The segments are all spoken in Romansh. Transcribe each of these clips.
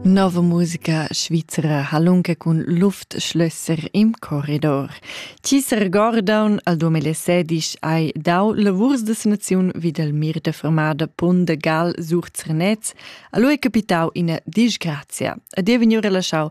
Nova musica svizra ha lunga cun Luftschlösser im Korridor. Chi s'regordaun al 2016 hai dau lavurs de sanaziun vid el mir de fermada Pun de Gal sur Zernez, a lui capitau ina disgrazia. Ad ei vegniu relaschau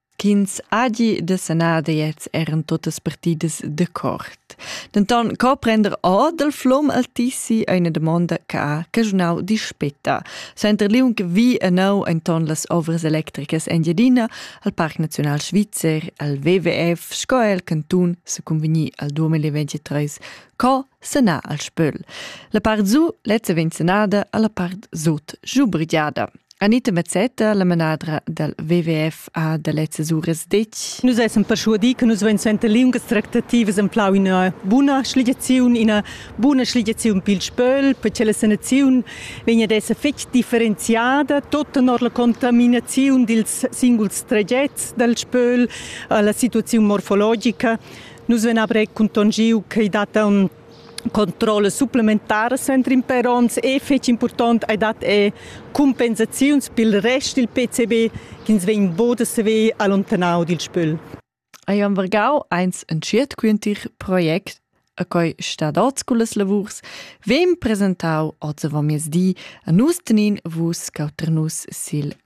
ch'ins hagi da sanar deiets eran tuttas partidas d'accord. Denton co prender or dal flom altissi è una domanda che ha caschunau dispetta. Center Liung vi anau enton las ovras electricas Engiadina al Parc Naziunal Svizzer, al WWF sco el cantun se convegni al 2023 co sanar al spöl. La part zu lezza vegn sanada alla part sut giubrigiada. Anita Mazzetta, la manadra dal WWF, ha da lezzas uras detg. Nus essan perschuadì che nus vein suenter liungas tractativas emplau ina buna schligiaziun, ina buna schligiaziun pil spöl, perché la sanaziun vegn ad esser fetg differenziada, tot tenor la contaminaziun dils singuls tragets dal spöl alla situaziun morfologica. Nus vein aber cuntangiu che i dat un controllas supplementaras entrin per onns e fetg impurtont ei dat è compensaziuns pil rest dil PCB ch'ins vegn boda saver allontanau dil spöl. Ei am vargau eins entschiet quintir project a coi stadots cullas lavurs, vem presentau oz avant miezdi a nus tenin vus cauternus sil